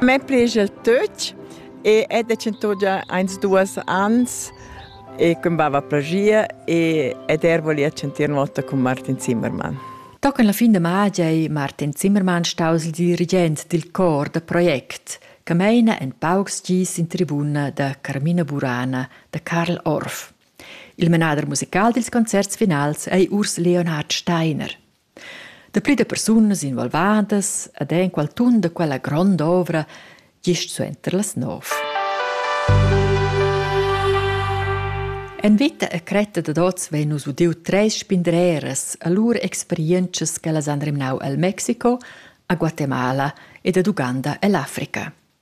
Me prigel tuch e è decentò già eins duas ans e cum bava plagia e ed er volia chantir una volta cun Martin Zimmermann. Da con la fin de magia è Martin Zimmermann staus il dirigent dil cor da project che meina en paucs gis in tribuna da Carmina Burana da Karl Orff. Il menader musical dils concerts finals ei Urs Leonhard Steiner. Dapli da persunas involvadas ed enqual tun da quella grond'ovra gist suenter las nov. En vita e cretta dad oz vein nus udiu treis spindreras a lur experientschas che las han remnau el Mexico, a Guatemala ed ad Uganda ell'Africa.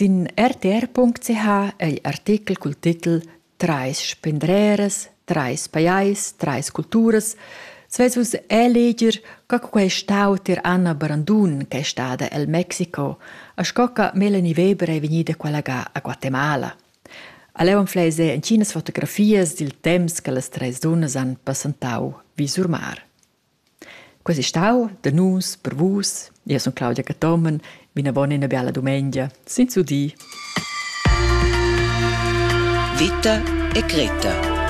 Sin rtr.ch ei artechel cul titel Trais spendreras, trais pajais, trais culturas sveis vus eleger co che quei stau tier Anna Brandun ch'ei stada el Mexico e sco che Melanie Weber ei vegnida collegà a Guatemala. A leu anfleis ei entginas fotografias dil temps che las treis dunnas han passentau vi sur mar. Quei ei stau da nus per vus. Io sun Claudia Cathomen, vinavon ina biala dumengia, senza dir. Vita e Greta